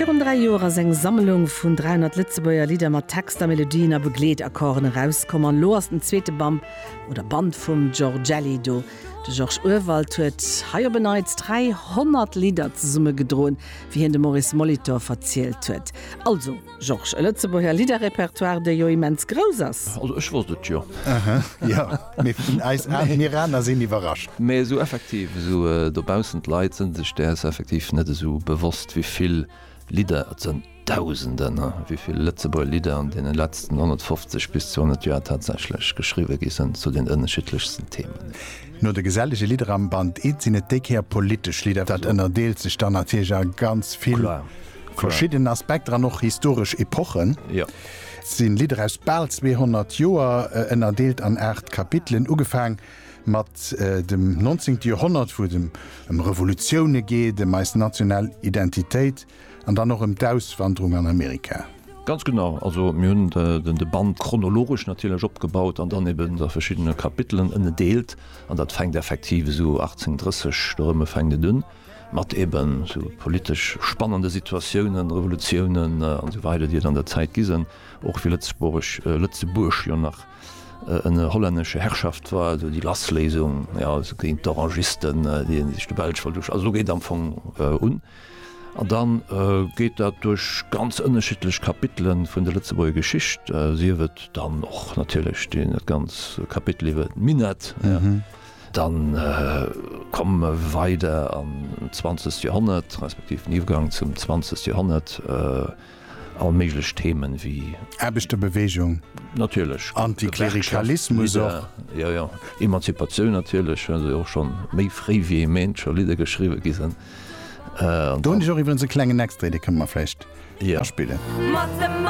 Virun dräi Joer ass eng Sammlung vun 300 Lëtzebuerger Lidder mat Texter, Melodien a Begleetakkorden erauskomm an elo ass den zweete Bamp oder Band vum Georgelli do. De Georges Urwald huet hei op en Neits 300 Lidder zesummegedroen, wéi hien dem Maurice Molitor verzielt huet. Also. Georges, e Lëtzebuerger Lidderrepertoire, dee jo immens grouss ass. Also ech wosst et jo. Aha, jo, mee vun eis Admiraner sinn iwwerrascht. Mee esou effektiv, esou dobaussen, d'Leit sinn sech däers effektiv net esou bewosst, wéi vill Lidder et sënn, Dausenden, wéi vill Lëtzebuerger Lidder an deene letzten 150 bis 200 Joer tatsächlech geschriwwe gi sënn zu den ënneschiddlechsten Themen. No de gesellege Lidder am Band It sinn et déi Kéier politesch Lidder. Dat ënnerdeelt sech dann natierlech a ganz vill verschidden Aspekter an och historesch Epochen. Et sinn Lidder aus bal 200 Joer, ënnerdeelt an aacht Kapitelen, ugefaang mat dem 19. Joerhonnert, wou et ëm Revolutioune geet, ëm eis national Identitéit, An dann och ëm d'Auswanderung an Amerika. Ganz genau, also mir hunn de Band chronologesch natierlech opgebaut an dann eben a verschiddene Kapitelen ënnedeelt. An dat fänkt effektiv esou 1830 do erëmme fänkt et un, mat eben sou politesch spannende Situatiounen, Revolutiounen an esou weider, déi et an der Zäit gi sen, och wéi Lëtzebuerg, Lëtzebuerg jo nach ënner hollännescher Herrschaft war, also déi Lassléisung, jo, also géint d'Orangisten, déi sech de Belsch wollt, also esou geet am Fong un. An da geet dat duerch ganz ënnerschiddlech Kapitele vun der Lëtzebuerger Geschicht, sief et dann och natierlech dee ganz Kapitel iwwer d'Minett, da komme mer weider an d'zwanzegt Joerhonnert, respektiv den Iwwergang zum zwanzegt Joerhonnert, all méiglech Themen wéi. Aarbechterbewegung. Natierlech. Antiklerikalismus och. Jo, jo. Emanzipatioun natierlech, well se och scho méi fréi wéi ee meent scho Lidder geschriwwe gi sinn. Do hunn ech och iwwerens e klengen Extrait, dee kënne mer vläicht aspillen.